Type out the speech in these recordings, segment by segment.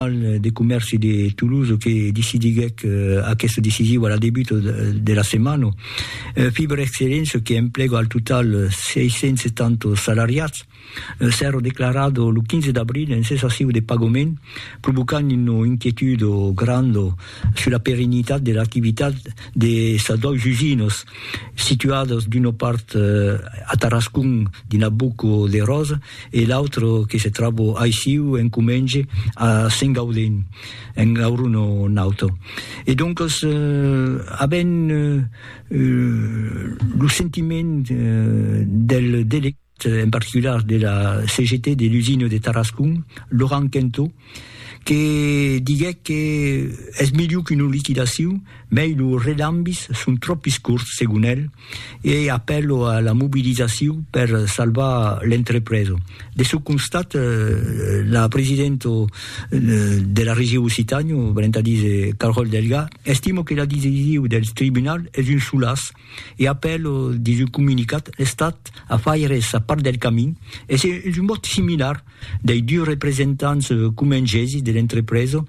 Tribunal de Comèrci de Toulouse que decidiguèc aqueste decisiu a la debut de la setmana. Fibre Excellence, que emplega al total 670 salariats, s'èra declarat lo 15 d'abril en cessaciu de pagament, provocant una inquietude granda sus la perenitat de l'activitat de sas dois usinas, situadas d'una part a Tarascon dins la Boca de Rosa e l'autra que se tròba aissiu en Comenge a Sengaudin, en Aurona nauta. E doncas avèm lo sentiment del delegat. en particular de la CGT de l'usina de Tarascon, Laurent Quentot, que diguèc que es melhor qu'una liquidacion, mei lo relambis son tropis corts, segon el, e apèlo a la mobilizacion per salvar l'entrepresa. De çò constat, la presidenta de la Region Occitània, valent a díser Carole Delga, estima que la decision del tribunal es un solàs, E après lo dins un comunicat, l'Estat a faire sa part del camin e se un vòt similar dei dus representants comengesi de l'entrepresa,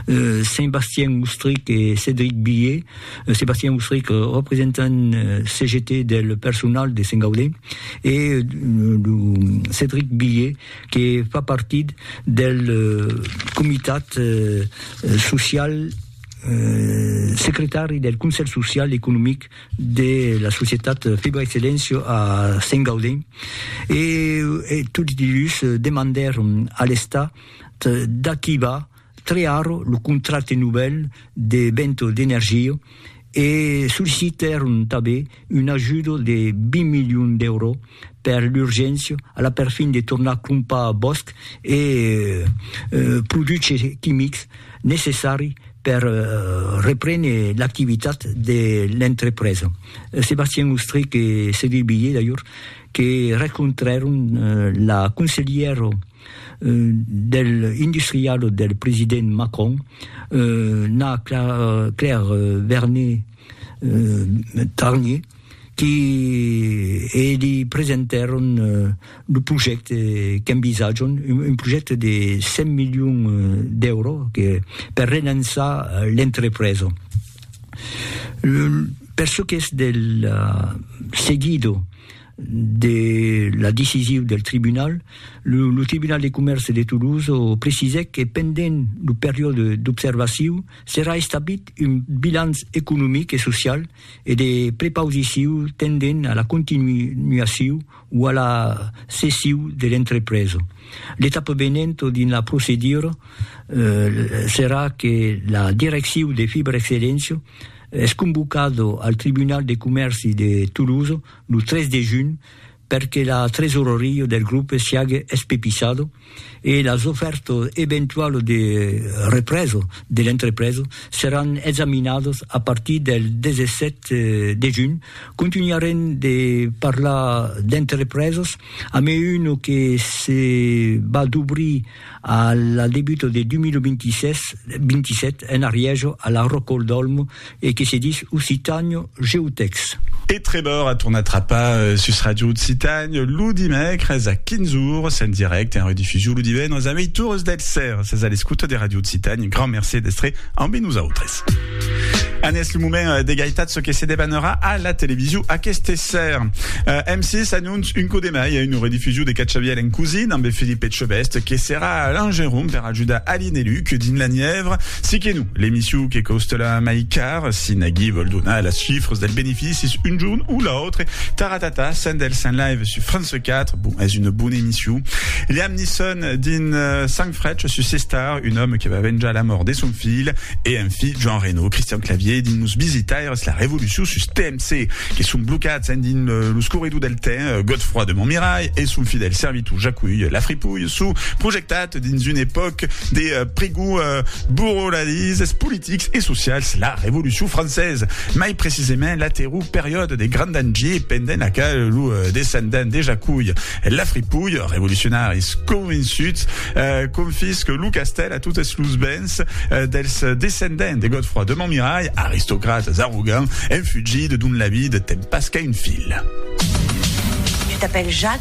Saint-Bastien Ustrich e Cédric Billié, Saint-Bastien Ustrich representant CGT del personal de Saint-Gaudens e lo Cédric Billié que fa partit del comitat social. secretari del Conselh Social e Economic de la Societat Febra i Selencio a Sent Gaudent e tots dus demandèron a l'Estat d'activar tre ara lo contracte novèl de Vento d'Energia e sollicitèron tanben un ajudo de 20 milions d'èuro per l'urgéncia a la perfin de tornar crompar bòsc e produches quimics necessari per reprene l'activitat de l'entrepresa. Sébastien Ostrich e Cédric Billé, d'ajor, que rencontrèron la conselhièra del industrial del president Macron, Nna Claire Vernet, Tarnier, qui e'li presentèron lo projècte qu'envisatjam, un projècte de 100 milions d'èuros que per relançar l'entrepresa. Per çò qu'es del seguido de la decisiu del tribunal, lo tribunal de comèrce de Toulouse precisèc que pendent lo periòde d'observaciu, Serà establit un bilanç economic e social e de prepausiciu tendent a la continuaciu o a la cessiu de l'entrepresa. L'etapa venent dins la procedura serà que la direcciu de Fibrexcellentia es convocada al Tribunal de Comèrci de Tolosa lo 3 de junh perque la tresoraria del grupe siague espepissada, e las ofèrtas eventualas de represa de l'entrepresa seràn examinadas a partir del 17 de junh. Contunharem de parlar d'entrepresas amé una que se va dobrir a la debuta de 2026, 27, en Arièja, a la Rocòl d'Òlmo, e que se ditz Occitànio Geotècs. E Trevor a tornat trapar sus Ràdio Occitània lo dimècres a 15 ores en dirècte en redifusion lo divendres a ueit ores del sèr. Sètz a l'escota de Ràdio Occitània, un grand mercé d'èstre ambe nosautres. An es lo moment de gaitat çò que se debanarà a la television aqueste sèr. M6 anonç un còp de mai a una redifusion de Cachavièl en cosin ambe Philippe Etchebest que serà a Langeron per ajudar Aline e Luc dins la Nièvre. Si que non, L'emissiu que costela mai car, si nagui vòl donar las chifras del beneficis un jorn o l'autre, Taratata, Sen del Sen Live sus France 4, bon, es una bona emissiu. Liam Neeson dins Sang Frech sus C-Star, un òme que va venjar la mòrt de son filh, e enfin Jean Reno, Christian Clavier dins Los Visitaires, la revolucion sus TMC, que son blocats endins los corredors del temps, Godefroi de Montmirai e son fidèl servitor Jacuy, la fripouille. çò projectat dins un epòc de prigor burolarisses politics e socials, la Revolucion Française, mai precisament la terror periòde de Grand Dangier pendent la qual lo descendent de Jaculh Lafripouille, revolucionaris convençut, confisque lo castèl a totes los bens dels descendents de Godefroi de Montmirail, aristocrates arrogants, enfugits dont la vida ten pas qu'un fil. Tu t'apèl Jac?